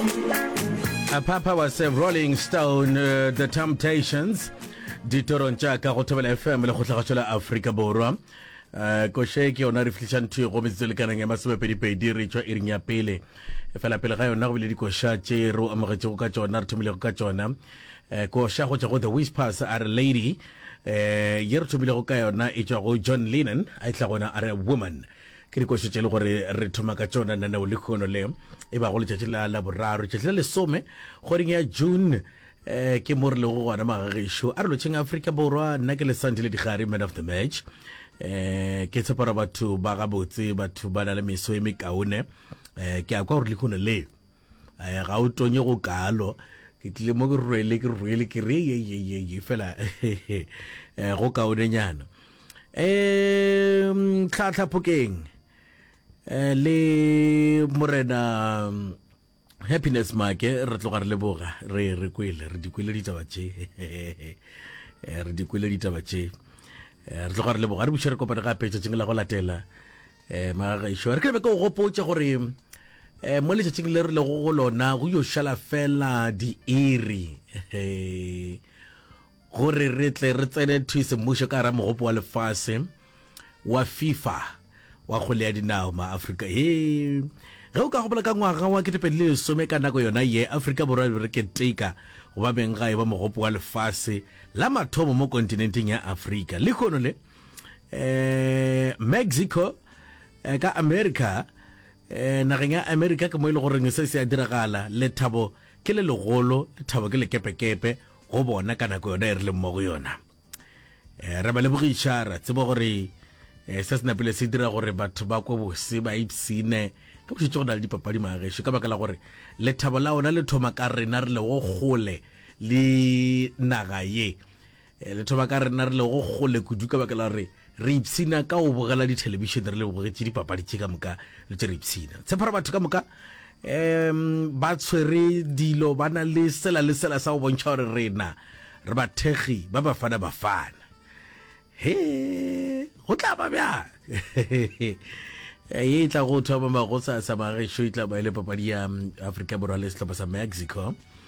A papa was a rolling stone uh, the temptations ditorong tša ka go thobela fm le kgotlhagatsho la aforika borwa um koše ke yona re fitlhišang ntho e go metsetse lekanang ya masomepedipedi re tšwa iring ya pele fela pele ga yona go bile dikoša tše re amogetšego ka tšona re thomilego ka tšona um koša go tšwa go the whispers a re lady um ye re thomilego ka yona e tšwa go john lennon a e tla gona a re woman ke dikošo tše le gore re thoma ka tšona naneo le kgono le e bago letšatši la la boraro tšatši la lesome kgweding ya june um ke mo re lego gona magagešo a re lotšheng aforika borwa nna ke lesanti le digare man of the match um ke tshepara batho ba gabotse batho ba na le meso e mekaone um ke a kwa gore le kgono le eh, ga o tonye go kalo ke tlile mo ke rwele ke rwele ke re ye ye ye ye fela eh, go kaonenyana um tlhatlhaphokeng eh, le morena mm, happiness make re tloga re leboga re re kwele re dikwele ditaba tše eh, re dikwele ditaba tše re tloga re leboga re buše re kopane gape tšatšing la go latela um magagešo re ke be ke o gopotše gore um mo letšatšing le re lego go lona go yo šala fela diiri gore re tle re tsene thuisemmušo ka ra mogopo wa lefase wa fifa wa kgole ya dinao ma afrika e ge o ka gopola ka ngwaga wa ketepedi le lesome ka nako yona ye afrika borwa e re keteka go ba beng ga e ba mogopo wa lefase la mathomo mo kontinenteng ya afrika le kgono le eh Mexico eh, ka America eh nageng ya America ke mo ile e goreng se se a diragala lethabo ke le legolo lethabo ke lekepekepe go bona ka nako yona e re leng mo go yona eh re ba le bogišara tsebo gore eh se se napile se dira gore batho ba kwe bose ba ipsine ka bošitse go na le dipapadi magesho ka baka la gore lethabo la ona le thoma ka rena re le go gole le naga ye E, letho ba ka rena re lego kgole kudu ka baka la gore re ipshina ka go bogela dithelebišene re le bogetše dipapadi tše ka moka le tše re ipshina tshepara batho ka moka um ba tshwere dilo ba na le sela le sela sa go bontšha gore rena re bathekgi ba bafana bafana he go tla ba bjang ye e tla go thoma magosa sa magešo e tla ba e le papadi ya um, afrika borwa le sehlopha sa mexico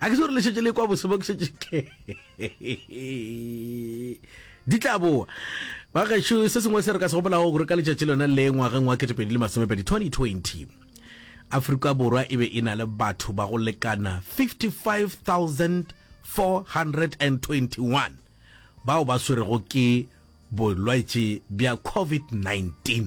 a ke se gore le šetse le kwa bose mo ke šetse ke di tla boa ba gešo se sengwe se re ka se gopolago gore ka letšatši lona le ngwageng wa ketepedi le masomepedi 2020 afrika borwa e be e na le batho ba go lekana 55421 bao ba swerego ke bolwetši bja covid-19